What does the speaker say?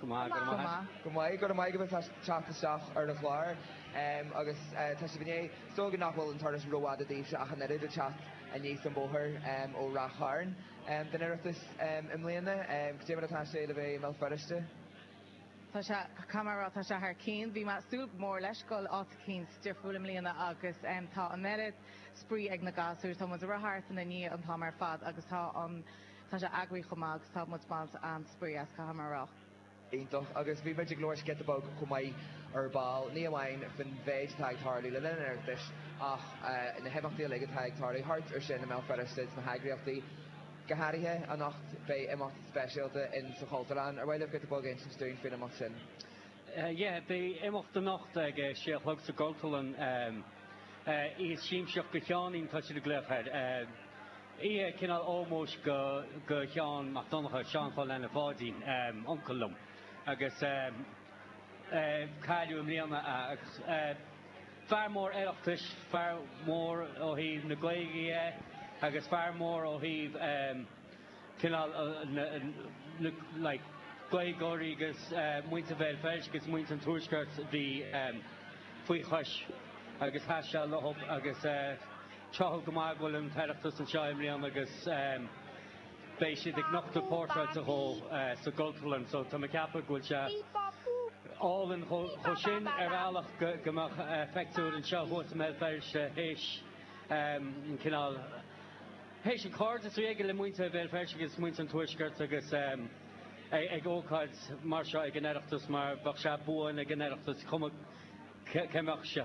Go maith, go maith. Go maith, go maith go bhfuil teacht isteach ar an chlár agus tá sibh inné. Súil go nach bhfuil an turas rófhada daoibhse ach an oiread ag teacht aníos an bóthar ó Ráth Chairn don Oireachtas i mbliana. Go deimhin, ó tharla atá sé le bheith i mBéal Feirste. Tá sé, cá mar a raibh, tá sé thar cionn. Bhí muid ag súil go mór leis go bhfuil áit eicínt difriúil i mbliana agus tá an oiread spraoi ag na gasúir. Tá muid ag rith thart anseo inniu an t-am ar fad agus tá an Tá sé eagraithe chomh maith agus tá muid ag baint an-spraoi as, caithfidh mé a rá. Iontach. Agus bhí muid ag labhairt giota beag chomh maith ar ball, ní amháin faoin mhéid atá ag tarlú le linn an Oireachtais ach na himeachtaí uilig atá ag tarlú thart ar sin i mBéal Feirste sna heagraíochtaí. Go háirithe anocht beidh imeacht speisialta in sa Chultúrlann ar mhaith leat giota beag a insint dúinn faoin imeacht sin? Yeah, beidh imeacht anocht ag sé a chlog sa gCultúrlann. Oíche Shiamsaíocht do Sheáinín tá siad ag glaoch air. Oíche cineál ómóis do Sheán Mac Donncha, Seán Phá Leanna Pháidín, uncail liom, a cailleadh i mbliana é. Agus fear mór Oireachtais, fear mór ó thaobh na Gaeilge dhe agus fear mór ó thaobh cineál like Gaeilgeoirí agus muintir Bhéal Feirste agus muintir an Tuaiscirt a bhí faoi chois agus tacaíocht acub agus tráthúil go maith go bhfuil an tOireachtas anseo i mbliana agus beidh siad ag nochtadh portráid dhó sa gCultúrlann so tá mé ceapadh go bhfuil sé álainn mar sin ar bhealach go mbeidh a phictiúr anseo thuas i mBéal Feirste théis an cineál Théis an cairdeas a bhí aige le muintir Bhéal Feirste agus muintir an Tuaiscirt agus é ag ócáid mar seo ag an Oireachtas mar bheadh sé buan ag an Oireachtas cuma cá mbeadh sé.